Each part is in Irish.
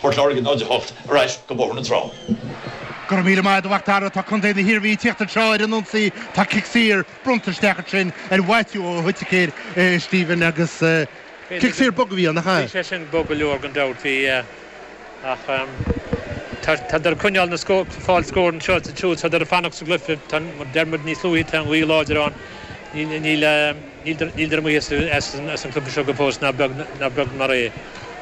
Port Láirge 0, 8 ar ais go Bóthar na Trá. Go raibh míle maith agat, a Mhacdara. Tá Contae na hIarmhí ag tíocht anseo ar an ionsaí. Tá cic saor bronnta isteach ansin ar Mhaitiú Ó hOiticéir, Stephen, agus cic saor bog a bhí ann, nach ea? Bhí sé sin bog go leor gan dabht, bhí, ach tádar ag coinneáil ag fáil scór anseo sa tsiúl, tádar ag fanacht sa gcluiche. Mar a deir muid níos luaithe, tá an ghaoth láidir ann, níl. Níl dar amuigh as an gcluiche seo go fóill ná beag mar é.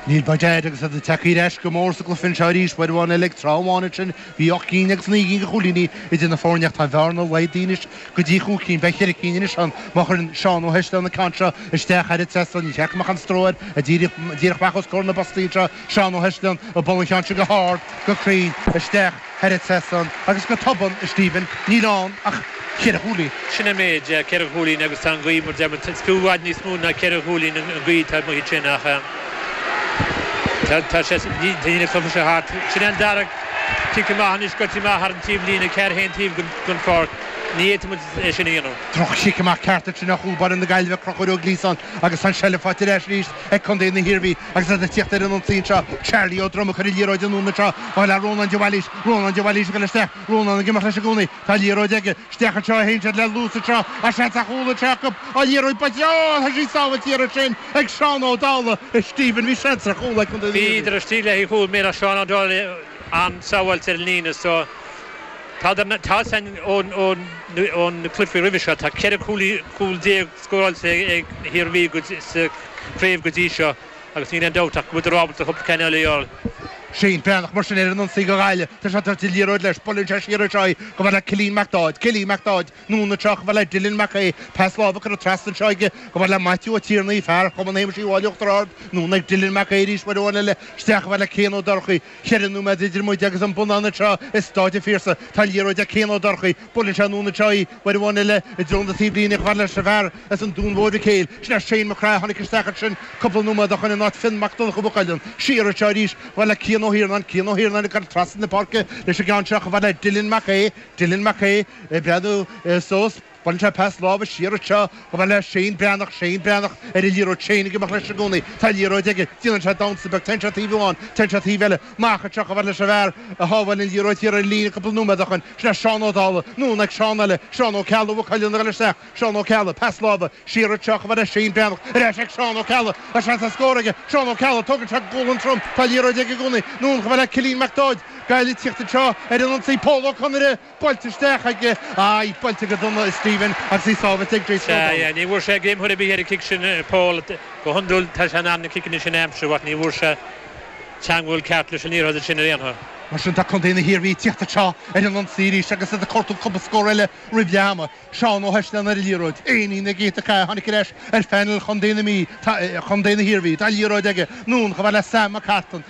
Níl by dad agus iad tagtha ar ais go mór sa gcluiche anseo arís, uair amháin eile ag tráth amháin ansin bhí ocht gcinn agus naoi gcinn de chúilíní idir na foirne ach tá an bhearna laghdaithe anois go dtí chúig cinn, beidh ceithre cinn anois ann má chuireann Seán Ó hEisleáin an ceann seo isteach thar an trasnán, níor cheart go mbeadh aon stró air, díreach amach os comhair na bpostaí anseo. Seán Ó hEisleáin ag bualadh an cheann sin go hard, go cruinn, isteach thar an trasnán agus go tobann, a Stephen, níl ann ach ceithre chúilín. Sin an méid, ceithre chúilín agus tá an ghaoth, mar a deir muid, is fiú i bhfad níos mó ná ceithre chúilín an ghaoth atá amuigh ansin ach tá sé, níl an cluiche seo thart. Sin é an dara cic amach anois, scoite amach thar an taobhlíne, ceann ar chaon taobh den pháirc, ní fhéadfaidh muid é sin a dhéanamh. Droch-chic amach ceart ansin ó chúl báire na Gaillimhe, Conchúr Ó Gliasáin agus tá an seilbh faighte ar ais arís ag contae na hIarmhí. Agus iad ag tíocht ar an ionsaí anseo, Charlie Ó Droma ag cur an liathróid anonn anseo, chomh fada le Rónán de Bhailís, Rónán de Bhailís ag goil isteach, Rónán ag imeacht leis i gcónaí, tá an liathróid aige, isteach anseo a théann siad le luas anseo ach seans ar chúl anseo acu, an liathróid buailte, Ó! tá sí sábháilte thiar ansin ag Seán Ó Dálaigh, a Stephen, bhí seans ar chúl ag Contae na hIarmhí. Bhíodar istigh le haghaidh cúl eile ach Seán Ó Dálaigh, an-sábháilt ar an líne so tá a fhios againn ón gcluiche roimhe seo, tá ceithre chúl déag scóráilte ag an Iarmhí sa craobh go dtí seo agus níl aon dabht ach go bhfuileadar ábalta cúpla ceann eile a fháil. Shane Breathnach mar sin ar an ionsaí do Ghaillimh. Tá sé ag tabhairt an liathróid leis, buaileann sé siar anseo í, chomh fada le Cillian MacDáid, Cillian MacDáid, anonn anseo, chomh fada le Dylan Mac Aoidh, pas láimhe curtha trasna anseo aige, chomh fada le Maitiú Ó Tiarnaigh, fear Chumann Shéamuis Uí Mháille Uachtar Ard, anonn ag Dylan Mac Aoidh arís, uair amháin eile isteach, chomh fada le Cian Ó Dorchaí, Ceithre nóiméad idir muid agus an bonnán anseo i Stáid an Phiarsaigh. Tá an liathróid ag Cian Ó Dorchaí. Buaileann sé anonn anseo í. Uair amháin eile, i dtreo na taobhlíne, chomh fada leis an bhfear as an Dún Mór Mhic Éil. Sin é Shane Mac Craith a tháinig isteach ansin cúpla nóiméad ó shoin in áit Fionn Mac Donnacha Mhaigh Cuilinn. Siar anseo arís, chomh fada le Cian Ó hIarnáin. Cian Ó hIarnáin ag goil trasna na páirce leis an gceann seo chomh fada le Dylan Mac Aoidh. Dylan Mac Aoidh ag breathnú suas. Buaileann sé pas láimhe siar anseo, chomh fada le Shane Breathnach, Shane Breathnach ar an liathróid, Shane ag imeacht leis i gcónaí, tá an liathróid aige, déanann sé damhsa beag, téann sé taobh amháin, téann sé taobh eile, amach anseo, chomh fada leis an bhfear a shábháil an liathróid thiar ar an líne cúpla nóiméad ó shoin, sin é Seán Ó Dálaigh, anonn ag Seán eile, Seán Ó Ceallaigh, Mhaigh Cuilinn ag goil isteach, Seán Ó Ceallaigh, pas láimhe siar anseo, chomh fada le Shane Breathnach, ar ais ag Seán Ó Ceallaigh, tá seans ar scór aige, Seán Ó Ceallaigh, tógann sé gualainn trom, tá an liathróid aige i gcónaí, anonn chomh fada le Cillian MacDáid, Gaillimh ag tíocht anseo ar an ionsaí, Pól Ó Conaire! Buailte isteach ag, aye, buailte go dona ag Stephen agus í sábhailte ag Grace Sea, O'Donnell. yeah, ní bhfuair sé greim ar chor ar bith ar an chic sin, Paul. Go hiondúil tá sé in ann na ciceanna sin a aimsiú ach ní bhfuair sé teangmháil cheart leis an liathróid ansin ar aon chor. Mar sin, tá contae na hIarmhí ag tíocht anseo ar an ionsaí arís agus iad ag cuartú cúpla scór eile roimh leath ama. Seán Ó hEisleann ar an liathróid, Éinín ag ith an cae, tháinig ar ais ar phainéal chontae na Mí, tá, chontae na hIarmhí, tá liathróid aige, Noone, cha bheith le Sam Mac Cartan,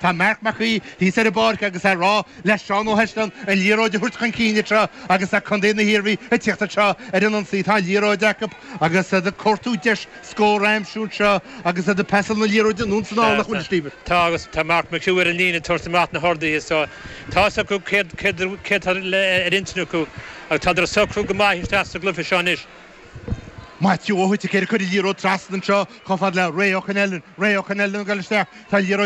Tá Marc Mac Aoidh thíos ar an bpáirc agus é ag rá le Seán Ó hEisleann an liathróid a thabhairt chun cinn anseo agus le contae na hIarmhí ag tíocht anseo ar an ionsaí. Tá an liathróid acu agus iad ag cuartú deis scór a aimsiú anseo agus iad ag pasáil na liathróide anonn is anall ach níl deifir acu. Tá agus tá Marc McHugh ar an líne ag tabhairt amach na horduithe so tá a fhios acu céard, céard, céard tá ar intinn acu agus tádar ag socrú go maith isteach sa gcluiche seo anois. Maitiú Ó hOiticéir ag cur an liathróid trasna anseo chomh fada le Ray Ó Connellan. Ray Ó Connellan ag dul isteach. Tá an liathróid